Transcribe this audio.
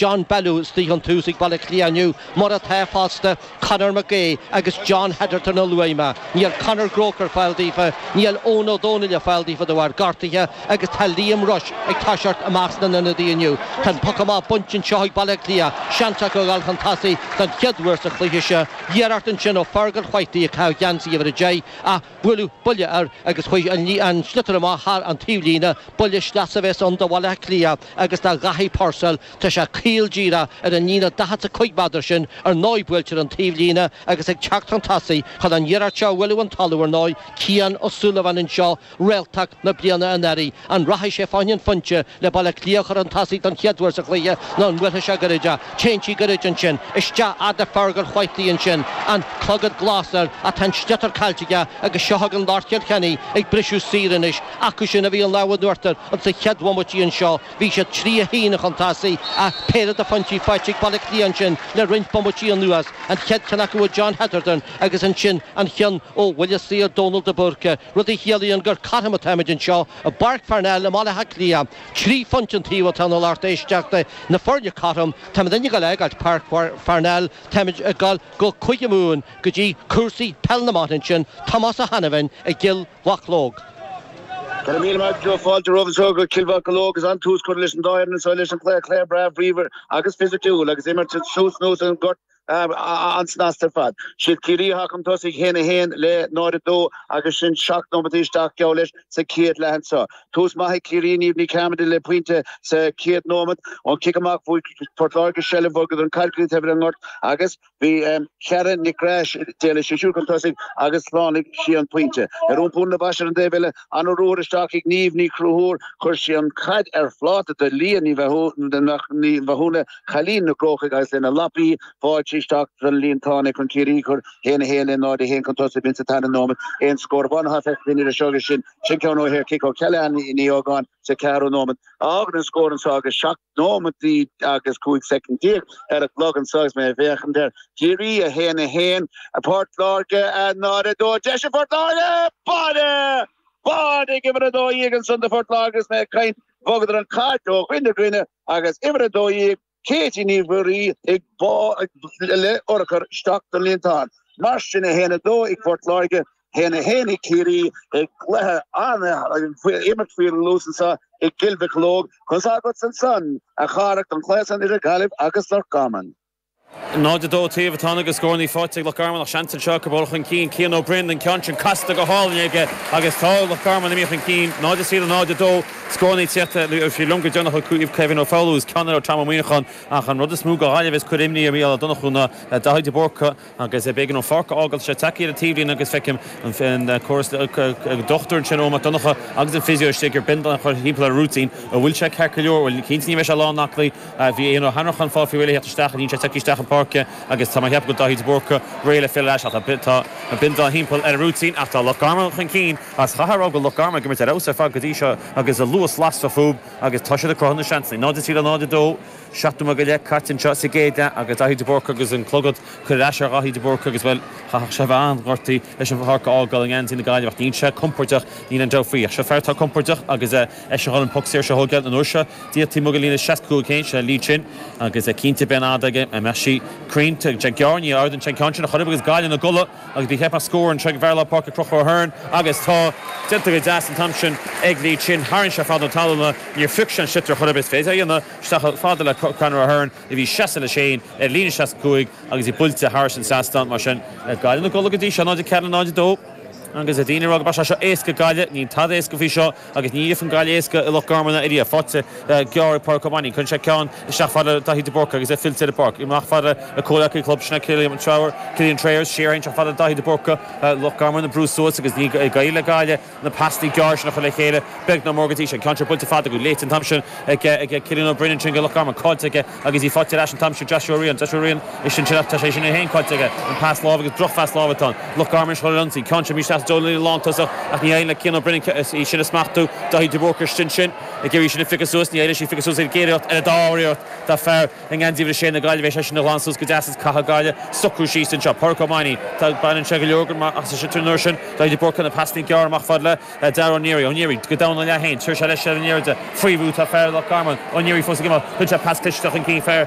John Bellew istigh ón tús ag Baile Átha Cliath inniu, mar atá fosta Conor Mac Aodha agus John Hetherton a luaigh mé. Níl Conor Groarke ar fáil daofa, níl Eoghan Ó Dónaill ar fáil daofa de bharr gortaithe agus tá Liam Rushe ag toiseacht i measc na n-ionadaí inniu. Tá an poc amach bainte anseo ag Baile Átha Cliath, seans acu a dhul chun tosaigh den chéad uair sa chluiche seo. Iarracht ansin ó Fergal Whitely, ag caitheamh geansaí uimhir a deich, a. Buaileadh buille air agus chuaigh an sliotar amach thar an taobhlíne, buille sleasa a bheas ann do Bhaile Átha Cliath agus Dáithí Purcell tá sé caol díreach ar an líne 45 méadar sin, ar ndóigh buailte ar an taobhlíne agus ag teacht chun tosaigh chun an iarracht seo a bhualadh ón talamh ar ndóigh, Cian Ó Súilleabháin anseo réalta na bliana anuraidh, an rachaidh sé fá choinne an phointe le Baile Átha Cliath a chur chun tosaigh don chéad uair sa chluiche nó an mbuailfidh sé gairid é. Téann sí gairid ansin, isteach fhad le Fergal Whitely ansin, an clogad glas air ach tá an sliotar caillte aige agus seo chugainn lár Chill Chainnigh ag briseadh saor anois. Acusan a bhí an lámh in uachtar insa chéad bhomaití anseo, bhí siad trí a haon chun tosaigh ach péire de phointí faighte ag Baile Átha Cliath ansin le roinnt bomaití anuas, an chéad cheann acu ó John Hetherton agus ansin an ceann ó bhuille saor Dónal de Búrca, rud a chiallaíonn gur cothrom atáimid anseo i bPáirc Pharnell i mBaile Átha Cliath. Trí phointe an taobh atá ann a lucht éisteachta, na foirne cothrom, táimidne ag dul a fhágáilt Páirc Pharnell, táimid ag dul go Cúige Mumhan go dtí cúrsaí peil na mban ansin, Tomás Ó hAiniféin i gCill Mocheallóg. Go raibh míle maith agat Joe, fáilte romhat anseo go Cill Mocheallóg agus an-tús curtha leis an dá fhoireann anseo leis an cluiche, cluiche breá bríomhar agus fisiciúil agus imirt suas anuas an gort. an-snasta ar fad. Siad Ciarraí atá chun tosaigh, 1 a 1 le 0 a 2, agus sin seacht nóimeataí isteach, geall leis, sa chéad leath anseo. Tús maith ag Ciarraí, Niamh Ní Chearmada le pointe sa chéad nóimeat ón chic amach, fuair Port Láirge seilbh, bhogadar an chaid go dtí an taobh eile den ngort agus bhí Karen Nic Craith, d'éalaigh sí siúd chun tosaigh agus shlánaigh sí an pointe. Ar iompú na boise ar an taobh eile, an-ruathar isteach ag Niamh Ní Chonchúir, chuir sí an chaid ar phláta do Leah Ní Mhathúna, cailín na gCrócach agus lena lapaí, bhuail sí isteach don líontán í chun Ciarraí a chur 1 a 1 le 0 a 1 chun tosaigh b'in sa tarna nóimeat aon scór amháin atá feicthe anseo agus sin sin ceann ó shaorchic ó Kellyann Ní Ógáin sa ceathrú nóimeat a fhágann an scór anseo agus 7 nóimeataí agus 15 soicind ar an gclog anseo agus mé ag féachaint ar Chiarraí 1 a 1 Port Láirge 0 2 deis ag Port Láirge! Báire! Báire! Ag uimhir a 12 ansan do Phort Láirge agus mé ag caint Bhogadar an chaid ó dhuine go duine agus uimhir a dó dhéag, Katie Ní Mhuirí, ag bualadh urchar isteach don líontán. Mar sin, a haon a dó ag Port Láirge, a haon a haon ag Ciarraí, an cluiche á imirt faoi luas anseo i gCill Mocheallóg, conas agatsa ansan a Chárthaigh don chluiche san idir Gaillimh agus Loch Garman? 0-2 an taobh atá ann agus scórannaí faighte ag Loch Garman ach seans anseo acu dul chun cinn, Cian Ó Broin, an ceann sin casta go hálainn aige agus tá Loch Garman imithe chun cinn, 0-3 le 0-2, scórannaí ag tíocht nó oirfí liom gur deireanach acu ó Kevin Ó Foghlú is ceann eile ó Tom Ó Muíneacháin ach an rud is mó do Ghaillimh is a chuirfeadh imní ar Mhícheál Ó Donnchú ná Daithí de Búrca agus b'éigean dó an pháirc a fhágáil tá sé tagtha ar an taobhlíne agus feicim go raibh an dochtúir ansin Eoin Mac Donnacha agus an physio istigh ar binda a chur timpeall ar an rúitín, an bhfuil sé ceart go leor, bhuel cinnte ní bheidh sé lán aclaí. Bhí Eoin Ó hAnnracháin faighte faoi réir le theacht isteach, níl sé tagtha isteach ar an bpáirc agus tá mé ag ceapadh go bhfuil Daithí de Búrca réidh le filleadh ar ais. Ach tá an binda timpeall ar an rúitín ach tá Loch Garman chun cinn is caithfear a rá go bhfuil Loch Garman ag imirt ar fheabhas ar fad go dtí seo agus luas lasrach fúb agus tá siad ag cruthú na seansanna. 0-3 le 0-2, seacht nóiméad go leith caite anseo sa gcéad leath agus Daithí de Búrca agus an clogad curtha ar ais ar Dháithí de Búrca agus, bhuel, chaithfeadh sé a bheith an-ghortaithe leis an pháirc a fhágáil i ngeansaí na Gaillimhe ach níl sé compordach, níl aon dabht faoi ach seo fear atá compordach agus, eh, Eisean chun an poc saor seo a thógáil an uair seo. Díreach taobh amuigh dá líne 65 féin, sin é Lee Chin, agus cinnte beidh an fhad aige an mbeidh sí cruinn. Tá sé gearr, ní amhdin sé an ceann sin a chur uibh agus Gaillimh ina gcodladh agus b'fhéidir go mbeidh scór anseo ag fear lár páirce Conchúr Hearne agus tá déanta go deas an t-am sin ag Lee Chin. Tharraing sé fad na talúna, níor phioc sé an sliotar chor ar bith is féidir a dhéanamh isteach chomh fada le Conor Hearne a bhí seasta leis féin ar líne 65 agus í buailte thairis an trasnán. Mar sin, Gaillimh ina gcodladh go dtí seo, 0-4 le 0-2, agus daoine ag rá go mbeadh sé seo éasca ag Gaillimh, níl tada éasca faoi seo. Agus ní fhaigheann Gaillimh éasca i Loch Garman ariamh, buailte gearr ag Pádraig Ó Mainnín. Cuireann sé ceann isteach fad le Daithí de Búrca agus é fillte ar an bpáirc. Amach fad lena chomhleacaí club, sin é Killian Trayers, Killian Trayers, siar féin isteach fad le Daithí de Búrca, Loch Garman ag brú suas agus níl ag éirí le Gaillimh na pasannaí gearra sin a chur le chéile, beag ná mór go dtí seo. Ceann seo buailte fada go leathan an t-am sin ag Cillian Ó Broin ansin do Loch Garman, caillte aige Agus í faighte ar ais an t-am seo. Joshua Ryan, Joshua Ryan, eisean ansin, ach tá sé sin é féin caillte aige. An pas láimhe agus drochphas láimhe atá ann. Loch Garman arís chun ionsaí. Ceann seo míshlachtmhar i dtreo líne lántosach ach ní éiríonn le Cian Ó Broin í sin a smachtú. Daithí de Búrca eisean ansin ag iarraidh í sin a phiocadh suas. Ní éiríonn leis í a phiocadh suas ar an gcéad iarracht ná an dara iarracht. Tá fear i ngan díobh le Séan na Gaillimhe, is é sin a ghlan suas go deas is caithfidh Gaillimh socrú síos anseo. Pádraic Ó Mainnín, tá, baineann sé go leor ach is é sin sin an uair sin. Daithí de Búrca, an pas gearr amach fad le. Dara Ó Neary. Ó Neary, Go domhain ina leath féin, thug sé leis, Ó Neary faoi bhrú ó fhear Loch Garman. Ó Neary, Fós ag imeacht, thug sé pas isteach chun cinn, fear,